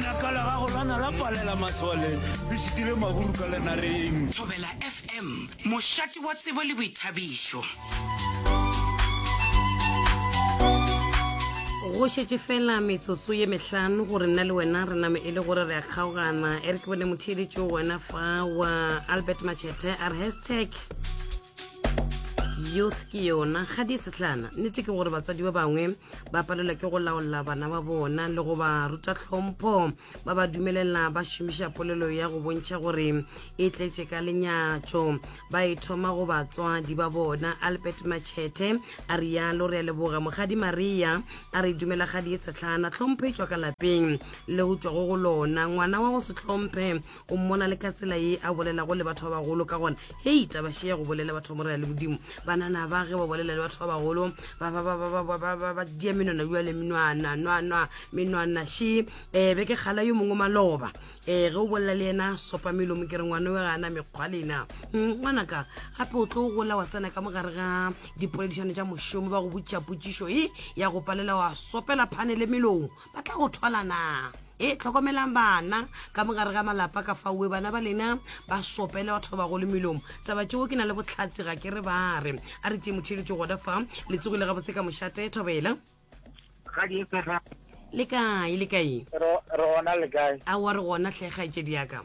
Lakala ga go lwana la palela masole le šitile maburu ka lenareng. Thobela FM, mošate wa tsebo le boithabišo. Go šetše fela metsotso ye mehlano gore nna le wena re name e le gore re a kgaogana e re ke bone motheeletšo wena fa wa albert machete a re hashtag youth ke yona ga di setlhana nnete ke gore batswadi ba bangwe ba palelwa ke go laola bana ba bona le go ba ruta tlhompho ba ba dumelela ba šomiša polelo ya go bontšha gore e tletše ka lenyatšo ba e thoma go batswadi ba bona albert machete a rialo re a leboga mogadi maria a re dumela gadi e tshetlhana tlhompho e tšwa ka lapeng le go tšwago go lona ngwana wa go se tlhomphe O mmona le ka tsela ye a bolelago le batho ba bagolo ka gona. Hei, taba šea go bolela batho ba mo rela le bodimo. Banana ba ge ba bolela le batho ba bagolo, ba ba ba ba ba ba ba ba ba dia menwana bjale menwana nwa nwa menwana she eh be ke kgala yo mongwe maloba eh ge o bolela le yena sopa melomo ke re ngwana we ga ana mekgwa lena Mm, ngwanaka gape o tlo gola wa tsena ka mo gare ga dipoledišano tša mošomo ba go botšiša potšišo e ya go palela wa sopela phane le melomo ba tla go thwala na e tlhokomelang bana ka mogare ga malapa ka faue bana ba lena ba sopele batho ba bagolo melomo taba tšeo ke na le botlhatsi ga ke re ba re a re tee motheletso gona fa le tsogile ga botse ka mošate thobela le kae le kae a wa re gona tlhega e tšedi yaka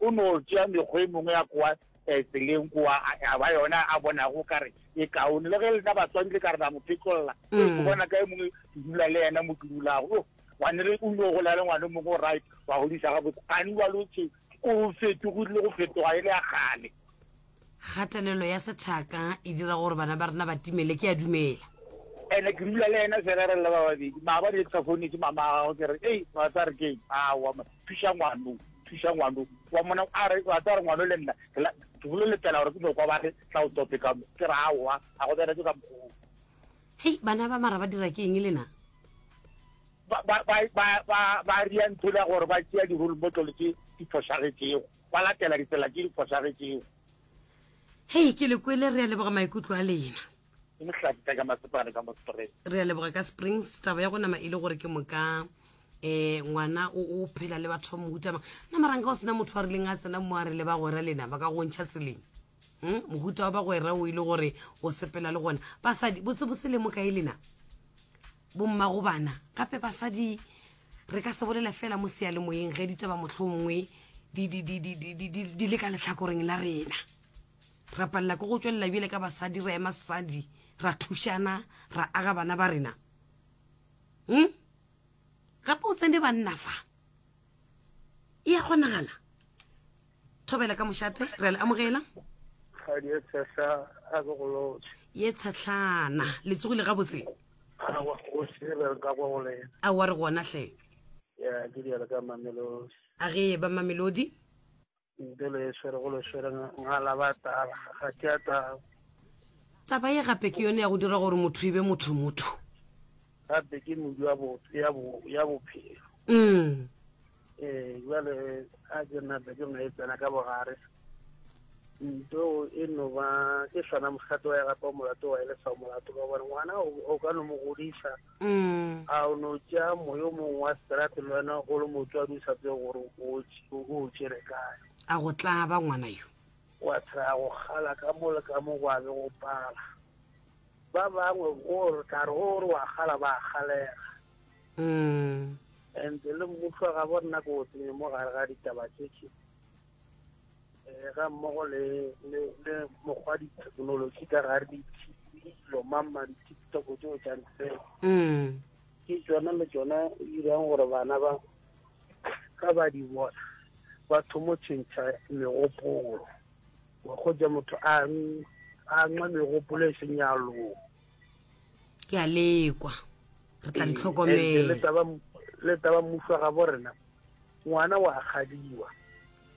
O no tšea mekgo e mengwe ya kwa eh, tseleng kwa a, a ba yona a bonago ka re e kaone. Le ge lena batswadi le ka re la mo phetlolla, e mm. ke bona ka e mongwe ke dula le yena mo ke dulago. Yo, wane re o no gola le ngwana mongwe o right, wa godisa gabotse. Gane wa lotse o fetogile go fetoga e le ya kgale. Kgatelelo ya sethaka e dira gore bana ba rena ba timele, ke a dumela. Ene ke dula le ene fela re le ba babedi, maabane ke sa founetse mama a gagwe ke re, ei, wa tsa re keng, awa ma, thuša ngwano, thuša ngwano, wa mona, a re, wa tsa re ngwano le nna, ke la, ke bolo letela gore ke no kwa ba re tla o tope ka mo, ke re awa, a go bereke ka mokgoo. Hei, bana ba mara ba dira ke eng lena? Ba, ba, ba, ba, ba, ba ria ntho la gore ba tšea di-role model tše di fošagetšego. ba latela ditsela tše di fošagetšego. Hei, ke le kwele. Re a leboga maikutlo a lena. Ke Mohlaki ka ka Masepane ka mo Springs. Re a leboga ka Springs. Taba ya go nama e le gore ke moka um ngwana o o phela le batho ba mohuta mang na maranka o sena motho a rileng a tsena mo a re le bagwera lena ba ka go ntšha tseleng um mohuta wa bagwera o e le gore o sepela le gona basadi botsebotse le mo kae lena Bommagobana, gape basadi re ka se bolela fela mo seyalemoyeng ge ditaba mohlomongwe di, di, di, di, di, di, di, di le ka letlhakoreng la rena ra palela ke go tšwelela bjele ka basadi ra ema sesadi ra thušana ra aga bana ba rena hm gape o tsene banna fa e ya kgonagala thobela ka mošate re a le amogela kgadi e tshehla a ke go lotse ye tshetlana le tsogile gabotse awa go sebe ka kwa go lena a wa re gona hle ya ke diale ka mamelodi a ge ye ba mamelodi nte le swere go le swere ngala ba tala ga ke a taba taba ye gape ke yone ya go dira gore motho e be motho motho gape ke modu ya bo- ya bo- ya bophelo mm ee jale a jona bedong e tsena ka bogare nto e no ba ke sona mogato wa gape wa molato wa ele sa molato ka gore ngwana o ka no mo godisa mm. a o no tša moyo mongwe wa strate le wena o le motswadi o sa tseye gore o tšere kae a go tlaba ngwana yo wa tshela go gala ka mo le ka mo go abe go pala ba bangwe o re tla re o re wa gala ba galega Mm. And le mmušwa ga bo nna ko tsenye mo gare ga ditaba tšetše eh, ga mmogo le le le mokgwa dithekenoloji ka gare ditilo mamma di-tiktok tseo tšang tseo mm. ke tsona le tsona dirang gore bana ba ka ba di bona ba thomo tšhentšha megopolo go ja motho a nxa megopolo e senyalong ke a lekwa re tla ntlhokomelletaba mmuso ga bo rena ngwana wa gadiwa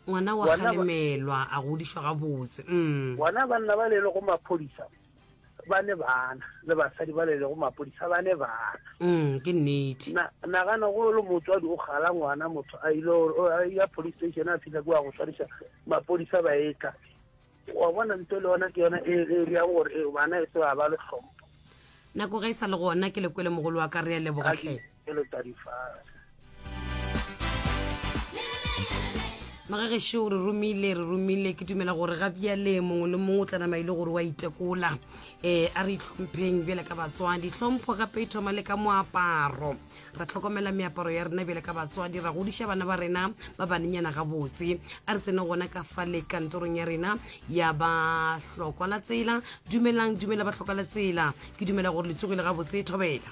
ngwana wa galemelwa a godišwa gabotse mm. bona banna ba lele go maphodisa ba ne bana le basadi ba lele go maphodisa ba ne bana mm, ke nnete nagana go le motswadi o gala ngwana motho a ile ya police station a fitlha ke wa go tshwariša maphodisa ba etla Wa bona, ntho le yona ke yona e e bjago gore e bana e se ba ba le tlhompho. Nako ge e sa le gona ke le kwele mogolo wa ka re a leboga hle. Ke le tadifase. magagešo re romile re romile ke dumela gore ga bjale mongwe le mongwe o tla nama e le gore wa itekola um a re itlhompheng bjale ka batswadi tlhompho gape e thoma le ka moaparo ra tlhokomela meaparo ya rena bjale ka batswadi ra godiša bana ba rena ba banenyana gabotse a re tsene gona ka fa le kantorong ya rena ya bahlokwa la tsela dumelang dumela bahlokwa la tsela ke dumela gore le tsogile gabotse thobela